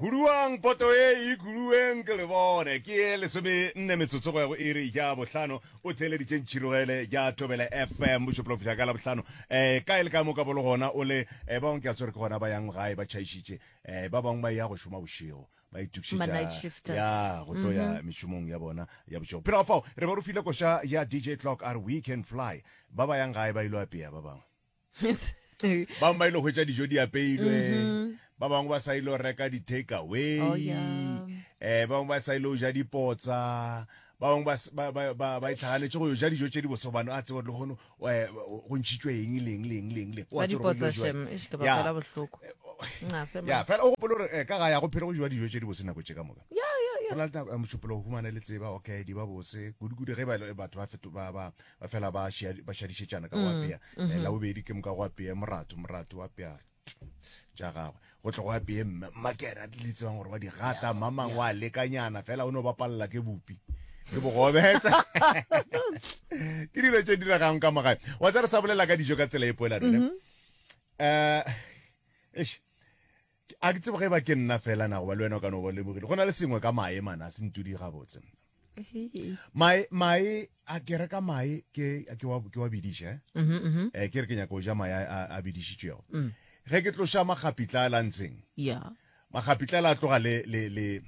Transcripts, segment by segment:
Huduwang poto ye e ikuluweng ke lebone ke ye lesome nne metsotso go ya go iri ya bohlano. O theeleditše ntšhirogele ya Tobele FM bošopelo go fihla ka Labohlano eh kae le kae mo ka bolo gona o le eh ba bangwe ke a tswere ke gona ba yang gae ba tšhaišitše eh ba bangwe ba ya go šoma bošego ba Ma night itukišetša shifters. ya go tlo ya mešomong ya bona ya bošego. Pele ga fao re ba rufile koša ya DJ Clock a re We Can Fly ba ba yang gae ba ile go apea ba bangwe. ba ba ile go hwetša dijo di apeilwe mhm. ba bangwe ba sa ile go reka di-take away oh, eh ba bangwe ba sa ile go ja dipotsa ba bangwe ba itlhaganetse go yo ja dijo tse di bosobano a tsebo legono eh, go ntšhitswe eng leng leng leng leng ya fela o gopolo gore eh, ka ga ya go phele go jewa dijo tse di bose nako tse ka moka go na le nako eh, motšhopolo go humane le tseba okay di ba bose kudu-kudu ge batho ba ba fela ba ba šadišetšana ka go mm, apea mm-hmm. eh, la bobedi ke moka go apea morato morato wa apea ja gagwe go tle go apeye mme makena di le tsebang gore wa di gata mamang wa lekanyana fela o ne o bapalela ke bopi ke bogobetsa ke dilo tse diragang ka magae wa tsa re sa bolela ka dijo ka tsela e poela rene um mm-hmm. eh, A ke tsebe ge ba ke nna fela na goba le wena o ka no ba lebogile go na le sengwe ka mae mana se ntudi gabotse mae mae a ke reka mae ke ke wa ke wa bidiša eh mm -hmm. eh ke re ke nyaka go ja mae a bidišitšego mm. ge ke tloša magapitla a lantsheng yeah. magapitla la tloga le le le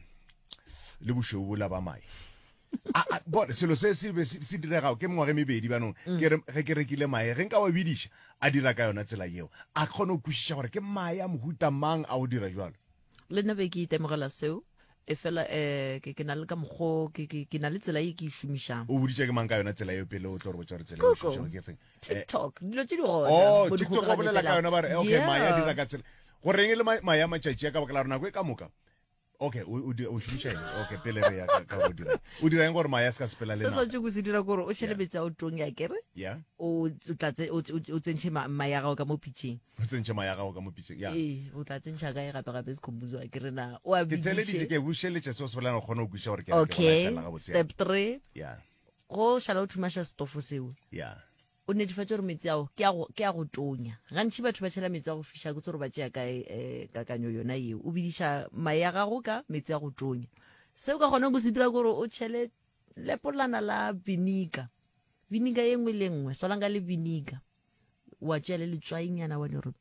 le bošweu bola ba mae bone selo se se be se diregago ke mengwage mebedi banong mm. ke re ge ke rekile mae ge nka wa bidiša a dira ka yona tsela yeo a kgone go kwešiša gore ke mae a mohuta mang a go dira jalo le nna be ke itemogela seo e fela um ke na le ka mokgo ke na le tsela e ke e šomišang o boditša ke mang ka yona tsela eo pele o tlo re botsa gore tsela e šomišang ke feng eh, tiktok dilo tse di gona oh, tiktok o bolela ka yona ba re okay mae a dira ka tsela goreng e le mae a matšatši a ka baka la gore nako e ka moka okay o dira o šomiša eng okay pele re ya ka go dira o dira eng gore maya se ka sepela le setswatse go se dira gore o tšhele metsi a o tong ya kere ya o tlatse o tsentshe maya gago ka mo pitšeng o tsentshe maya gago ka mo pitšeng ya ee o tla tsentsha kae gape gape se khombuzo a kere na o a bidise ke theleditše ke bušeletše se o se bolana kgone go kwiša gore ke okay step 3 ya go šala o thumaša setofo seo ya O netefatša gore metsi ao ke a go ke a go tonya. Gantši batho ba tšhela metsi a go fiša, ke tsoro ba tšea kae eh, kakanyo yona yeo. O bidiša mae a gago ka metsi a go tonya. Se o ka kgonang go se dira gore o tšhele lepolana la vinika vinika ye nngwe le nngwe swalang ka le vinika wa tšea le letswainyana wa di gore